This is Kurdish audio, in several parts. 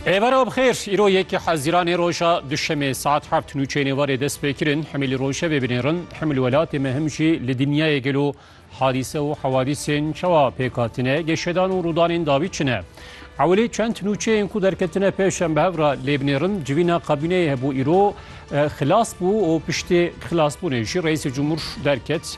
Êvara bi xêr, îro yekê Hezîranê roja Duşemê saet heft nûçeyên êvarê dest pê kirin Himilî Rojevê binêrin. Himil welatê me him jî li dinyayê gelo hadîse û hewadîsên çawa pêk hatine, geşedan û rûdanên dawî çi ne. Ewilî çend nûçeyên ku derketine pêş em bi hev re lê binêrin. Civîna kabîneyê hebû îro xilas bû û piştî xilasbûnê jî Reîsê Cumhur derket.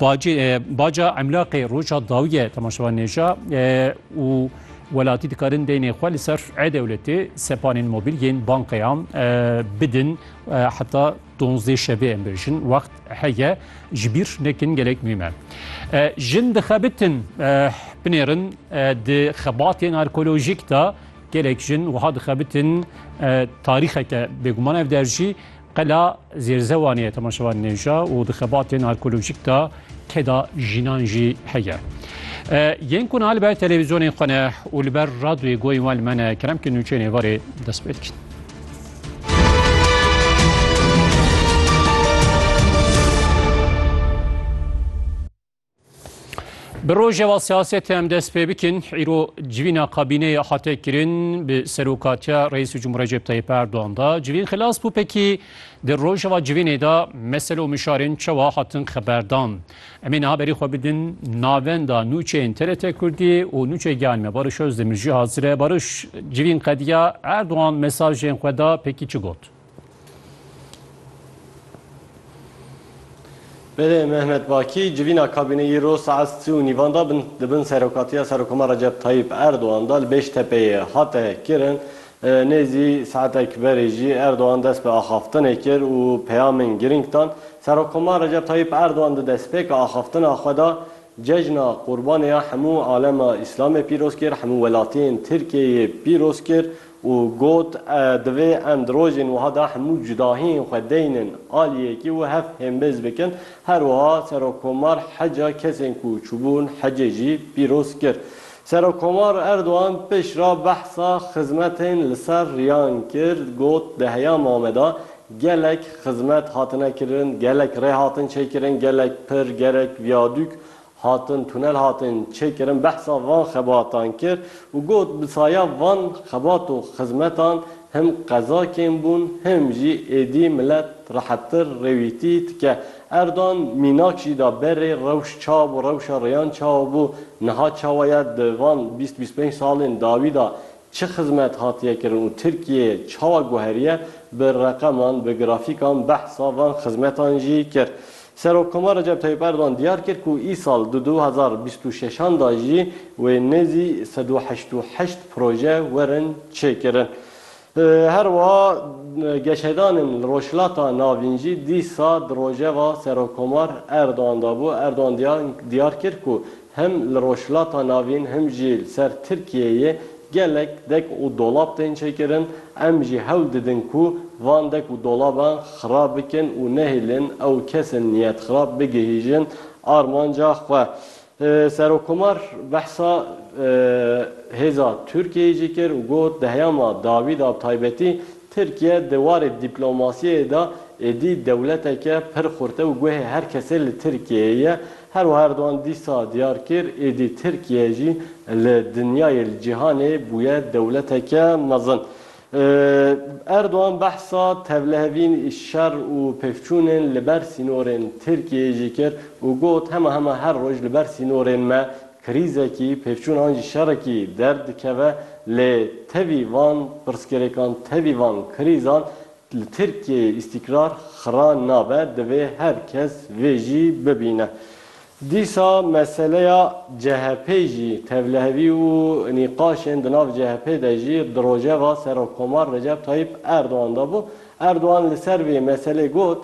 Bacê baca emlaqê roja dawiye temaşevan nêja û welatî dikarin deynê xwe li ser e-dewletê sepanên mobîl yên bankeyan bidin heta donzdê şevê em bêjin wext heye ji bîr nekin gelek muhîm e. Jin dixebitin binêrin di xebatên arkeolojîk de gelek jin wiha dixebitin tarîxeke bêguman ev der jî Qela Zêrzewanê ye temaşevan nêja û di xebatên arkeolojîk de keda jinan jî heye. Yên ku niha li ber televîzyonên xwe ne û li ber radyoyê goyên wan li me ne keremkên nûçeyên êvarê dest pê dikin. Bi rojeva siyasetê em dest pê bikin, îro civîna kabîneyê hate kirin bi serokatiya Reîsû Cumhur Recep Tayyip Erdoğan da. Civîn xilas bû pekî di rojeva civînê de mesele û mişarên çawa hatin xeberdan. Em ê niha berî xwe bidin navenda nûçeyên TRT Kurdî û nûçeyê giyanê me Barış Özdemir jî hazir e. Barış, civîn qediya Erdoğan mesajên xwe da pekî çi got? Belê Mehmet Bakî civîna kabîneyî ro saet sî û nîvan de di bin serokatiya Serokoma Recep Tayîp Erdogan de li Bêştepeyê hate kirin. Nêzî saetek berê jî Erdogan dest bi axaftinê kir û peyamên girîng dan. Serokoma Recep Tayîp Erdogan di destpêka axaftina xwe de Cejna Qurbanê ya hemû alema Îslamê pîroz kir, hemû welatiyên Tirkiyeyê pîroz kir û got, Divê em di rojên wiha de hemû cudahiyên xwe deynin alî yekê û hev hêmbêz bikin. Her wiha Serokkomar heca kesên ku çûbûn hecê jî pîroz kir. Serokkomar Erdogan piştre behsa xizmetên li ser riyan kir, got, Di heya Mame de gelek xizmet hatine kirin, gelek rê hatin çêkirin, gelek pir, gelek viyadûk Hatin tunel hatin çêkirin behsa van xebatan kir û got, Bi saya van xebat û xizmetan him qeza kêm bûn him jî êdî milet rehettir rêwîtî dike. Erdogan mînak jî da berê rewş ça bû, rewşa rêyan çawa bû, niha çawa ye, di van bîst bîst pênc salên dawî da çi xizmet hatiye kirin û Tirkiyeyê çawa guheriye, bi reqeman, bi grafîkan behsa van xizmetan jî kir. Serokkoma Recep Tayyip Erdogan diyar kir ku îsal di du hezar û bîst û şeşan de jî wê nêzî sed û heşt û heşt proje werin çêkirin. Her wiha geşedanên li Rojhilata Navîn jî dîsa di rojeva Serokkomar Erdogan de bû. Erdogan diyar kir ku Him li Rojhilata Navîn him jî li ser Tirkiyeyê gelek dek û dolab tên çêkirin, em jî hewl didin ku van dek û dolaban xirab bikin û nehêlin ew kesên niyetxirab bigihîjin armanca xwe. Serokkomar behsa hêza Tirkiyeyê jî kir û got, Di heyama dawî de bi taybetî Tirkiye di warê dîplomasiyê de êdî dewleteke pir xurte û guhê her kesê li Tirkiyeyê ye, Her wiha Erdogan dîsa diyar kir, êdî Tirkiye jî li dinyayê, li cîhanê bûye dewleteke mezin. Erdogan behsa tevlihevîn, şer û pêvçûnên li ber sînorên Tirkiyeyê jî kir û got, Hema hema her roj li ber sînorên me krîzekî, pêvçûn an jî şerekî derdikeve lê tevî van pirsgirêkan, tevî van krîzan Li Tirkiyeyê îstîkrar xira nabe, divê her kes vê jî bibîne. Dîsa meseleya CHP'ê jî tevlihevî û nîqaşên di nav CHP'ê de jî di rojeva Serokkomar Recep Tayyîp Erdogan de bû. Erdogan li ser vê meselê got,